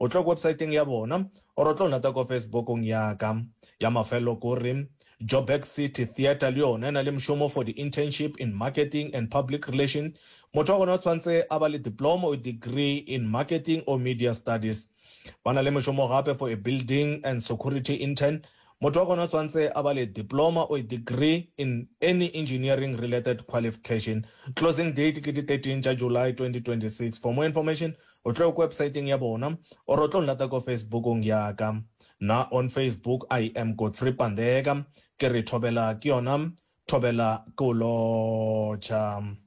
O tlo websaeteng ya bona or o tlo lata ko Facebookong ya ka. Ya mafelelo ko re, Joburg City Theatre le yona e na le mšomo for di internship in marketing and public relation. Motho wa gona o tshwantse a ba le diploma or degree in marketing or media studies. Ba na le mešomo gape for a building and security intern. Motho wa gona o tshwantse a ba le diploma or degree in any engineering related qualifcation. Closing date ke di 13 tša July 2026. For more information O tlo ko websaeteng ya bona or o tlo nlata ko Facebook-ong ya ka. Nna on Facebook I am Godfrey Pandeka, ke re thobela ke yona thobela ke o lotšha.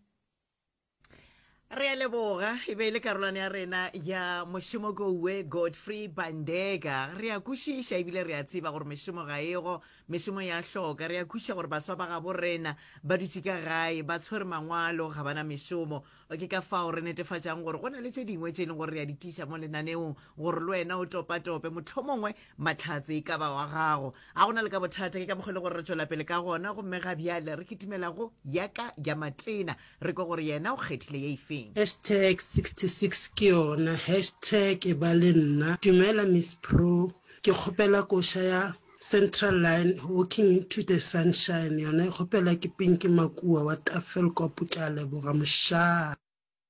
Re a leboga, e be e le karolwane ya rena ya mošomo kouwe Godfrey Pandeka. Re a kwešiša ebile re a tseba gore mešomo ga ego, mešomo ya hloka. Re a kwešiša gore baswa ba gabo rena ba dutše ka gae, ba tshwere mangwalo, ga bana mešomo. Ke ka fao re netefatšago gore go na le tše dingwe tše e leng gore re a di tliša mo lenaneong gore le wena o topatope mohlomongwe mahlatse e ka ba wa gago. A go na le ka bothata, ke ka mokgwa e le gore re tšwela pele ka gona gomme ga bjale re kitimela go ya ka ya Matena re kwe gore yena o kgethile ye efeng. Hashtag 66 ke yona hashtag e ba le nna. Dumela Miss Pro, ke kgopela koša ya Central Line, Walking to the Sunshine, yona e kgopelwa ke Pinky Makuwa wa Tafelkop, ke a leboga mošaa.